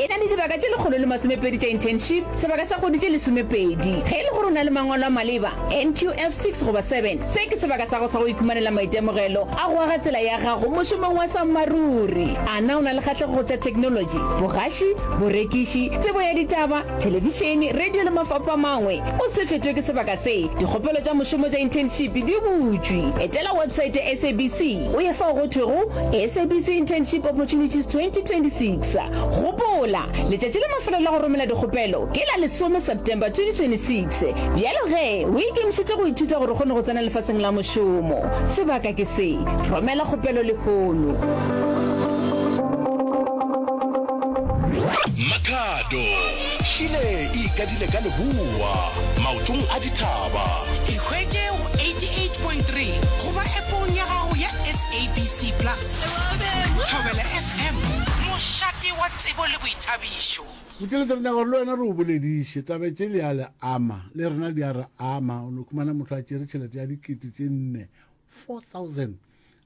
E na le dibaka tše lekgolo le masomepedi tša internship, sebaka sa kgwedi tše lesomepedi. Ge e le gore o na le mangwalo a maleba, NQF 6 goba 7, se ke sebaka sa gago sa go ikhumanela maitemogelo a go aga tsela ya gago mošomong wa sammaruri. A na o na le kgahlego go tša theknolotši, bogaši, borekiši, tsebo ya ditaba, thelebišene, radio le mafapho a mangwe? O se fetwe ke sebaka se, dikgopelo tša mošomo tša internship di butšwe. Etela website ya SABC o ye fao go thwego SABC Internship Opportunities 2026. Sa, Gopola, letšatši la mafelelo la go romela dikgopelo ke la lesome September 2026. Bjalo ge o ikemišetše go ithuta gore o kgone go tsena lefaseng la mošomo, sebaka ke se, romela kgopelo lehono. Makhado, Šile e ikadile ka leboa, maotong a dithaba. Ikhwetše go 88.3 goba Appong ya gago ya SABC Plus. Thobela Hem, mošate wa tsebo le boithabišo. Motšeletša re nyaka gore le wena re o bolediše. Tabe tše li a le ama, le rena di a re ama. O no khumana motho a tšere tšhelete ya dikete tše nne, 4000,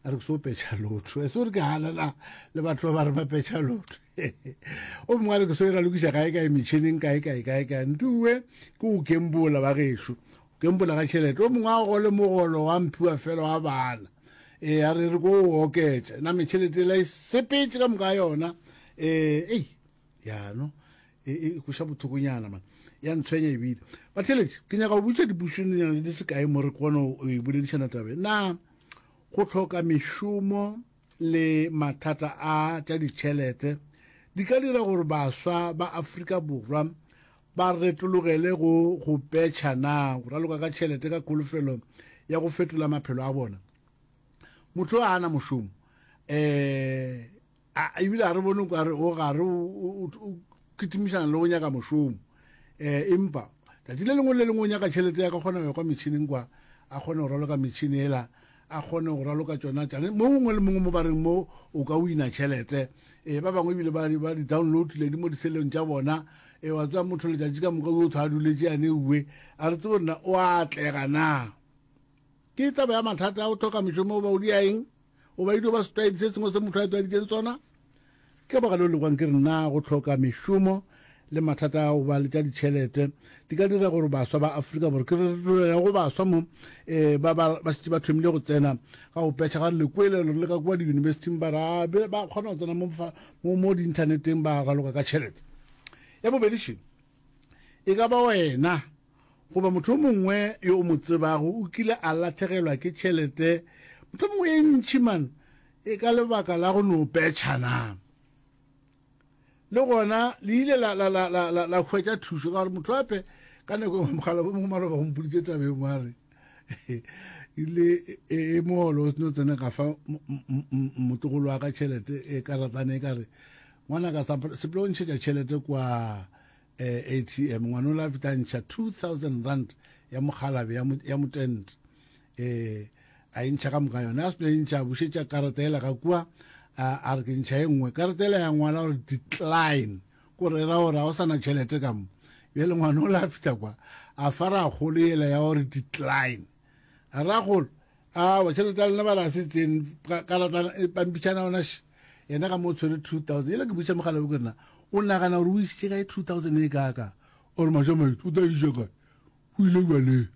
a re ke so petšha lotho. Ese o re ke hanana le batho ba ba re ba petšha lotho. O mongwe a re ke so e ralokiša kae-kae metšhineng, kae-kae, kae-kae. Ntuwe ke go kembola bagešo. Ke mpola ka tšhelete. O mongwe a gole mogolo wa mphiwa fela wa bana. E, a re re ko o oketša. Name tšhelete ela e sepetše ka moka yona. E, ei, yano, e, e kweša bothokonyana man. Ya ntshwenya ebile. Batheletši, ke nyaka go butša dipušonyana di se kae mo re kgone go e boledišana tabe. Na go tlhoka mešomo le mathata a tša ditšhelete di ka dira gore baswa ba Afrika Borwa ba retologele go go petšha na go raloka ka tšhelete ka kholofelo ya go fetola maphelo a bona motho a ana mošomo um ebile ga re bone kare o gare o kitimišana le go nyaka mošomo um empa tsatsi le lengwe le lengwe o nyaka tšhelete ya ka kgona go ya kwa metšhineng kwa a kgone go raloka metšhini ela a kgone go raloka tsona tsane mo gongwe le mongwe mo ba reng mo o ka wina tšhelete e ba bangwe ebile ba di download le di mo diseleng tša bona e wa tswa motho letšatši ka moka o thwa a duletse yane uwe a re tsebo nna o a atlega na ke taba ya mathata o tlhoka mešomo o ba o di ya eng o ba idio ba setwaedi se sengwe se motho a tweditseng tsona Ka baka leo lekwang ke re na go hloka mešomo le mathata a go ba le tša ditšhelete di ka dira gore baswa ba Afrika Borwa ke re go baswa mo eh ba ba ba se ba thomile go tsena ga go petšha ga lekwelelo le ka kwa diyunibesithing ba ra ba kgona go tsena mo mo mo diinthaneteng ba raloka ka tšhelete ya bobedi šeng e ka ba wena goba motho o mongwe yo o mo tsebago o kile a latlhegelwa ke tšhelete motho mongwe e ntšhi man e ka lebaka la go no petšha na le gona le ile la, la, la, la, la, la hwetša thušo ka gore motho ape ka nako engwe mogala bo mongwe maloba gompoditše tabeng wa re ile e, e mogolo o seno tsena ka fa motogolo wa ka tšhelete e karatane e ka re ngwana ka sepele o ntšhetša tšhelete kwa eh, atm ngwana o la feta ntšha 2000 rand ya mogalabe ya motent eh, a e ntšha ka moka yone a seno e ntšha a bušetša karata ela ka kua a re ke ntšha e nngwe karata ela ya ngwala gore decline kore ra gore ga o sana tšhelete ka mo bjale ngwana o la feta kwa a fara golo ela ya gore decline a ra golo a wa tšhelete ya lena ba ra se tseng karatana e pampitšhana ona sh yena ka mo tshwere two thousand yela ke butša mogala o ke rena o nagana gore o isitše kae two thousand e kaka ore maša maitse o tla iša kae o ile jwaleng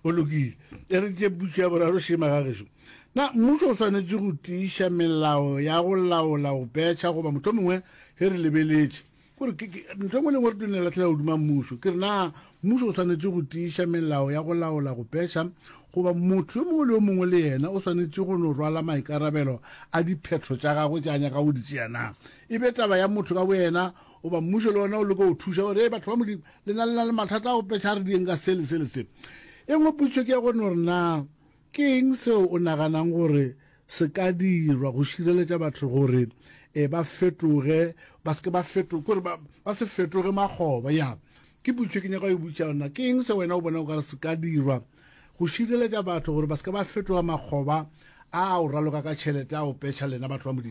o lokile e re tše puso ya boraro šema ga gešo na mmušo o swanetše go tiiša melao ya go laola go petšha goba motho mongwe ge re lebeletše kore ntho engwe lengwe re tone latlhela godima mmušo ke re na mmušo o tshwanetse go tiiša melao ya go laola go peša goba motho yo mongwe le yo mongwe le yena o tshwanetse go no rwala maikarabelo a diphetho tša gagwe tša nyaka go di tšea na e be taba ya motho ka boyena goba mmušo le ona o leka go thuša gore e batho ba modimo le na le na le mathata a go peša re dieng ka se le se le se e ngwe potšo ke ya gore no re na Ke eng seo o naganang gore se ka dirwa go šireletša batho gore e ba fetoge, ba se ke ba feto, ke gore ba, ba se fetoge makgoba? Ya, ke potšo e ke nyaka go e botša yona. Ke eng se wena o bona o ka re se ka dirwa go šireletša batho gore ba se ke ba fetoga makgoba a a o raloka ka tšhelete, a o petšha lena batho ba Modimo?